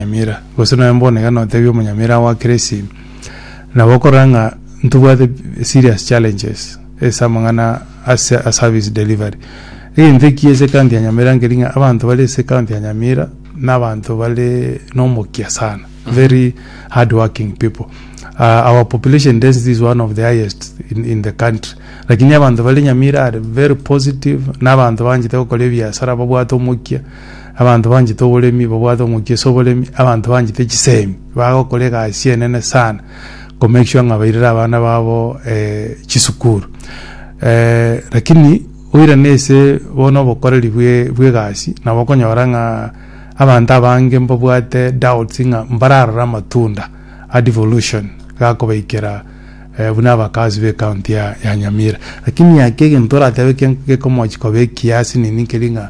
omonyamera, gose nonya mbonekane otebie omonyamera agwakere esimu, nabo okorora ng'a ntobwate serious challenges ase amang'ana ase a service delivery. Egento ekiya ase ekaunti ya Nyamira nkeri ng'a abanto bare ase ekaunti ya Nyamira na abanto bare na omokia sana, very hard working people. Our population density is one of the highest in in the country lakini abanto bare Nyamira are very positive na abanto banchete gokora ebiasara babwate omokia. Abanto banchete oboremi, babwate omokia ase oboremi, abanto banchete chisemi, bagokora egasi enene sana, ko make sure ng'a bairire abana babo chisukuru. Lakini oirane ase bono obokoreri bwe bw'egasi, nabo okonyora ng'a abanto abange mbabwate doubts ng'a mbararore amatunda a devolution gakobaikera buna abakazi b'ecounty ya ya Nyamira. Lakini ake egento toratebe eke gekomochi koba ekiasi nini keri ng'a.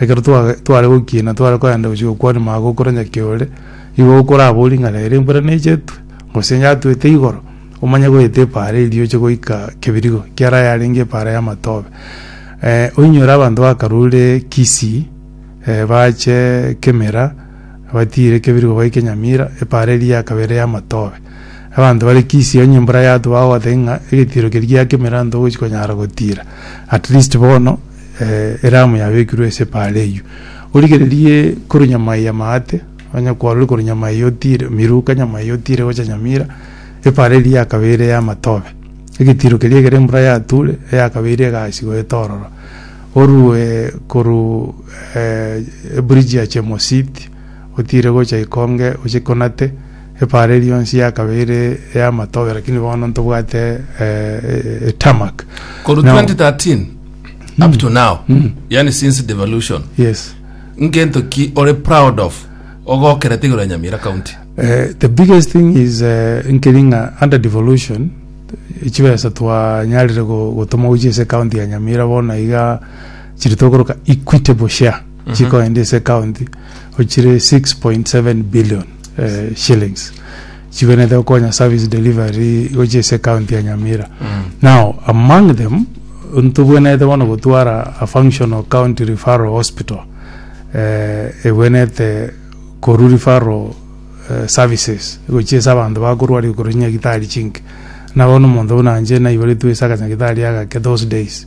Ekero twa tware gokiina tware kogenda gochia gokwania mago okore nyaki ore, igo okoraba oring'ana ere embura nechetwe, gose yatwete igoro, omanye goeta epaara erio oche goika kebirigo kiaro ayarenge epaara ya matobe. oinyore abanto bakarure Kisii, bache Kemira, batiire kebirigo baike Nyamira, epaara eria yakaba ere ya matobe. Abanto bare Kisii onye embura yatwa bagogotebi ng'a egetiiro keria gia Kemira ntogochi konyara gotiira, atleast bono. eramu yabekirwe ase epaara eyio, origererie korwa nyama eye amaate, onye kwarure korwa nyama eye otiire miruka nyama eye otiire gocha nyamira, epaara eria ya kabere ya amatobe, egetiiro keria ekero embura yature, eya kabere egaasigwa ete ororo. Orue korwa eburiji ya Chemositi, otiire gocha Ikonge, oche Konate. Ebaare rionsi yakabe ere ey'amatobe, lakini bono ntobwate etarmac. Korwa Now- 2013 up to now yani since devolution Yes. ngento ki ore proud of ogokerete igoro ya nyamira county Eh, the biggest thing is eh, nkeri ng'a under devolution eh, chibesa twanyarire go- gotoma gochia ase county ya nyamira bono iga chiri tokoroka equitable share chikoende ase county ochire 6.7 billion shillings chigwenerete gokonya service delivery gochia ase ecounty ya Nyamira. Now among them ntobwenerete bono gotwara a functional county referral hospital eh, egwenerete korwa referral eh, services gochia ase abanto bakorwaria korwa chinyagitari chinke. Nabo bono omonto buna inche naiboretwe ase akanyagitari agake those days.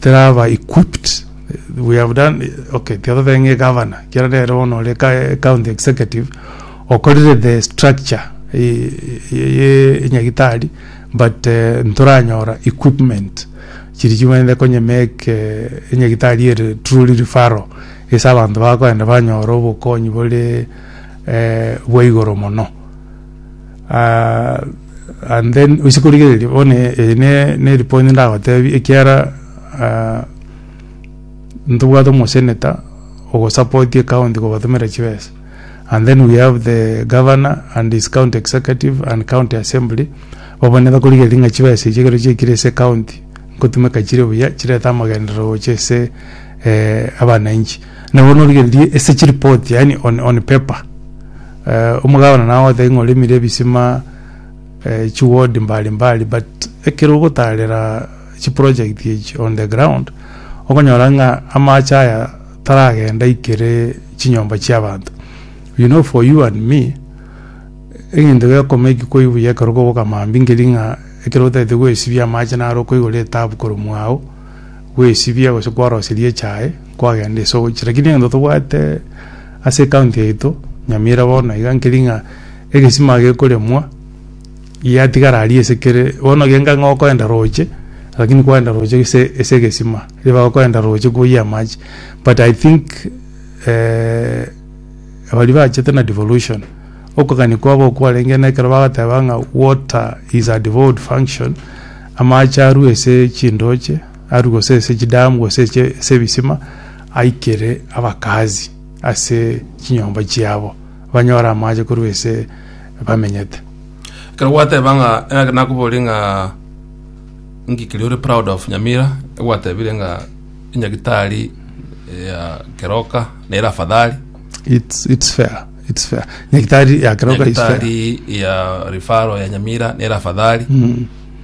Tera aba equipped we have done okay tiga totebe ng'a egovernor ekiagera nere bono ore ka county executive okorire the structure e- e- ye enyagitari but eh, ntoranyora equipment chiri chimanyete konye make eh, enyagitari ere truly referral ase abanto bakoenda banyore obokonyi bore eh, bwa igoro mono Ah, and then oise korigereria bono eye eye ne- neri point ndagotebi, ekiara ah, ntobwate omoseneta ogosapotia ecounty kobatomera chibesa, and then we have the governor and his county executive and county assembly, bobe nigo bakorigereria ng'a chibesa echi ekero chiaikire ase ecounty, nkotumeka chire buya chirete amagenderero gocha ase eh abananchi. Nabo norigereria ase chiripoti yaani on on paper. Eh, omogabana nagoteba ng'a oremire ebisima eh, chiward mbali mbali but ekero ogotarera chiproject echi on the ground okonyora ng'a amache aya taragenda ikere chinyomba chiabanto you know for you and me egento gekoma eki koi buya ekero koboka mambia nkeri ng'a ekero otagete gwesibia amache naro okoigora etabu korwa mwago gwesibia gose kwaroseria echae kwagenda ase ogochia lakini egento tobwate ase ekaunti yaito Nyamira bono iga nkeri ng'a egesima gekoremwa giatigara aria ase kere bono genga ng'a okoenda roche lakini kwaenda roche gese ase egesima riria bagokoenda roche koyia amache but I think baria bachete na devolution okogania kwabo okwo kwarenge na ekero bagoteba ng'a water is a devolved function amache arue ase chindoche. aru gose ase chidamu gose eche ase ebisima, aikere abakazi ase chinyomba chiabo, banyore amache korwa ase bamenyete. Ekero gwateba ng'a eh, nakoborie ng'a inki keria ore proud of Nyamira, egwatebire ng'a enyagitari eh, ya Keroka nere afadhali, It's, it's fair, it's fair. Nyagitari ya Keroka is fair. enyagitari ya rifaro ya Nyamira nere afadhali, Mm.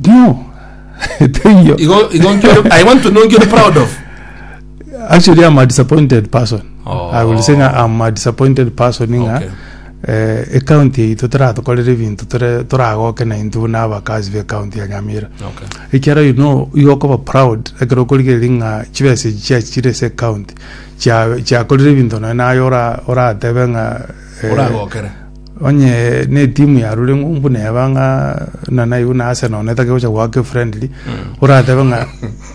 Ndio. Teiyo. Igo igo nki ore- I want to know nki ore proud of. Actually, I'm a disappointed person. Oh. I will say nga I'm a disappointed person nga Okay. eh, ecounty yaito toratokorere ebinto tore- toragoke na intwe buna abakazi be county ya Nyamira. Okay. Ekiara you know igo okoba proud ekero okorigereria ng'a chibesa echi chiachi chire ase ecounty chia- chiakorire ebinto nonya naye ora- oratebe ng'a eh, Oragokere. Onye netimu yarure ng'umbu neba ng'a na naibu na Arsenal na etake gocha goaka efriendly oratebe ng'a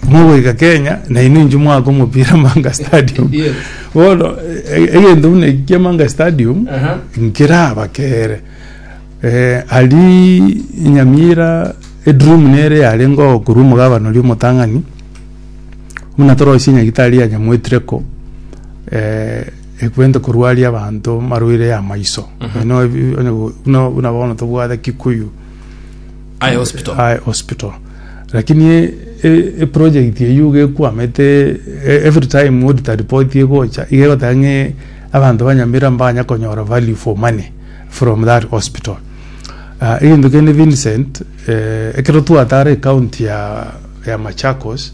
mogoika Kenya na inwe inche mwaaka omopira Manga Stadium Yes. bono e- e- egento buna eki kia Manga Stadium Aha. nkerabakere eh, aria Nyamira edream nere yarengeo korwa omogabane oria omotang'ani buna torosie nyagitari ya Nyamoetireko eh, Ekwenta korwaria abanto marwaire ya maiso. Onye no- onye go- buna buna bono tobwate Kikuyu Aye hospital. Eye hospital. Lakini e- e- eproject eyio iga ekwamete e- every time auditor report egocha iga egoteba ng'e abanto ba Nyamira mbanya konyora value for money from that hospital. Ah, egento kende Vincent, eh, ekero twatara ecounty ya ya Machakos,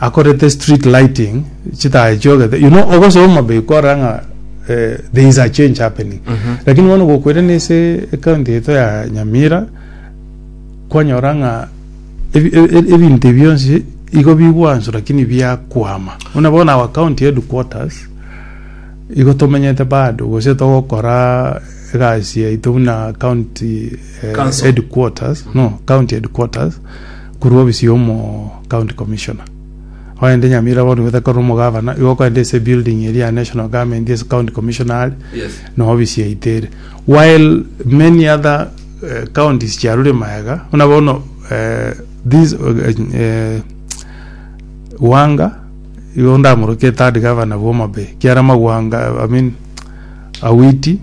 akorete street lighting chitae chiogete you know ogosoa omabiko orora ng'a eh, there is a change happening Mhm. lakini bono gokwere nese ekaunti yaito ya nyamira kwanyora ng'a ebi- e- e- ebinto ebi bionsi igo bigwansu lakini biakwama buna bono our county headquarters igo tomenyete bado gose togokora egasi yaito buna county eh, Council. headquarters no county headquarters Korwa obisi ya omo county commissioner ogende nyamira bono igo takorire omogavana igo okogenda ase ebuilding eria ya national government ase county commissioner are Yes. na obisi yaito ere while many other eh, counties chiarure maega buna bono eh, this eh, eh, Wanga igo ndamorokia third governor bwa Homa Bay kiara magwanga I mean Awiti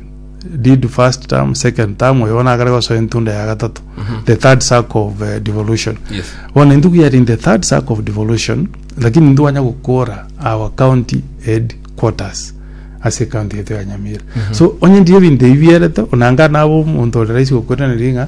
did first term second term oyo bono akare gosoa entunda ya gatato the third circle of eh, devolution Yes. bono intuku yari in the third circle of devolution lakini ntwanya gokora our county headquarters ase county yetu ya nyamira so onye ndire ebinto ebi bierete onanga nabo omonto ore raisi gokweraneri ng'a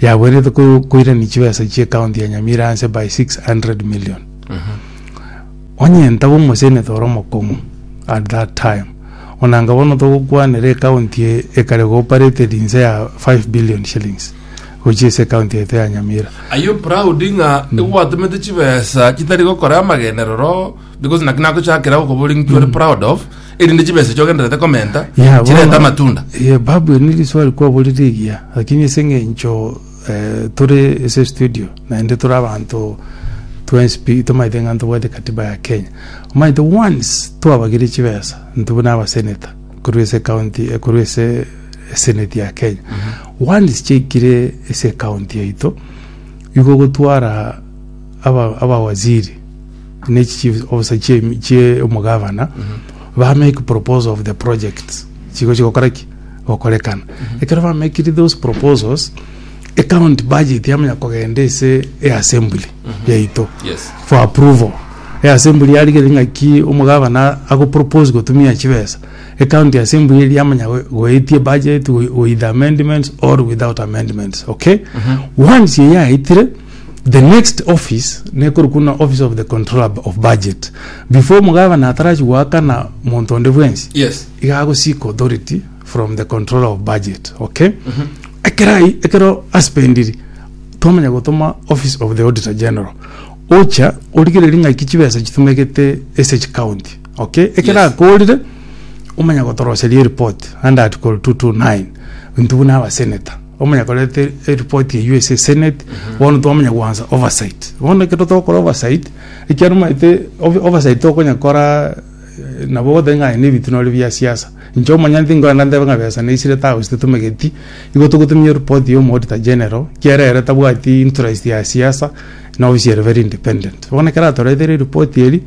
yagoenerete ko- koirania chibesa chie county ya Nyamira anse by 600 million. Onye ntaba omoseneta ore omokong'u at that time, onanga bono togokwanera ecounty eye ekare cooperated inse ya 5 billion shillings gochia ase ecounty yaito ya Nyamira. Are you proud ng'a egwatomete chibesa chitari gokora amagenderero because naki nagochakera okobori ng'iki ore proud of erinde chibesa echi ogenderete komenta Yeah, chirete bono- amatunda Eh, babu eri riswali kwaborire egiya lakini ase eng'encho eh, tore ase studio naende tore abanto twenspi tomaete ng'a ntobwate katiba ya kenya omaete once twabagire chibesa intwe buna abaseneta korwa ase county eh, korwa ase eseneti ya kenya once chiaikire ase county yaito igo gotwara aba- abawaziri ne chief officer chie chie omogavana ba make proposal of the projects chigo chigokora ki gokorekana ekero ba make those proposals account budget yamanya kogenda ase e assembly yaito Yes. for approval e assembly yarigere ng'aki omogavana ago propose gotumia chibesa account ya assembly eria yamanya go- goetia budget wi- with amendments or without amendments okay once eye yaetire The next office nekorokwa buna office of the controller b- of budget before omogabane atarachi goakana monto onde bwensi Yes. iga ago seek authority from the controller of budget okay ekero ai ekero aspendiri twamanya gotoma office of the auditor general ocha origereria ng'aki chibesa chitumegete ase chicounty okay ekero Yes. akorire omanya gotoroseria ereport under article 229 intwe buna abasenator omanya koreta eripoti eywo ase esenate bono twamanya gwansa oversight bono ekero togokora oversight ekiagera omanyete ov- oversight tokonya kora eh, nabo ogoteba ng'a aye na ebitunore bia siasa inche omonyanti nkorenda ntebe ng'a besa naisire tagus titomegeti igo togotumia eripoti ya omouditor general ekiagera ere tabwati interest ya siasa na ofisi ere very independent bono ekero atoretere eripoti eria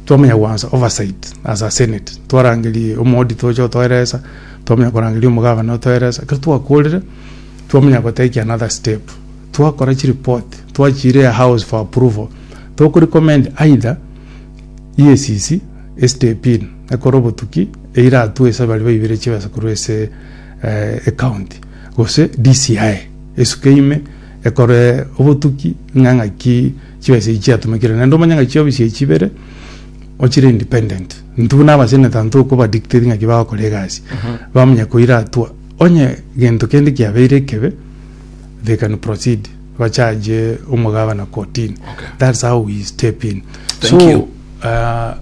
twamanya gwansa oversight as a senate twarangeria omo auditor oche otoeresa. Twamanya korangeria omogabane otoeresa ekero twakorire, twamanya go take another step. Twakora chireport, twachiiria house for approval. Toku recommend either EACC e step in ekore obotuki eiratwe ase baria baibire chibesa korwa ase eh, ecounty gose DCI esuke ime ekore obotuki ng'a ng'aki chibesa echi chiatumekire naende omanye ng'aki chiobisia chibere ochire independent Intwe buna abaseneta ntokoba dictate ng'aki bagokora egasi. Bamanya koira atua onye gento kende kiabeire ekebe they can proceed ba charge omogabana kotini. Okay. That's how we step in. Thank so, you. Uh,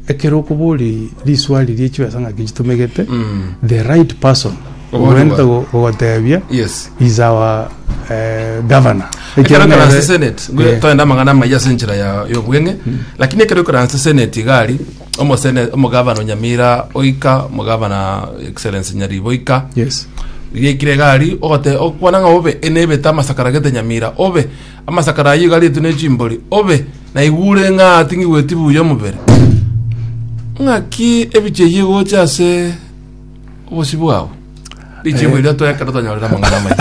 ekero okobori riswari riechibesa ng'aki chitumegete mm. the right person Obonto Obonto go- gogotebia yes is our eh, governor ekero karanse senate ngwe Eh. toende amang'ana amaya ase enchera ya y'obweng'e lakini ekero karanse senate igari omosene omogavana onyamira oika omogavana excellence nyaribo oika yes gikire gari ogote okwana ng'a obe enebete amasakara gete nyamira obe amasakara ayio gari etu nechimbori obe naigure ng'a ating'igweti buya omobere ng'aki ebicheyie gocha ase Obosio bwao. Richie Eh. bwira toekero tonyorere amang'ana amaya.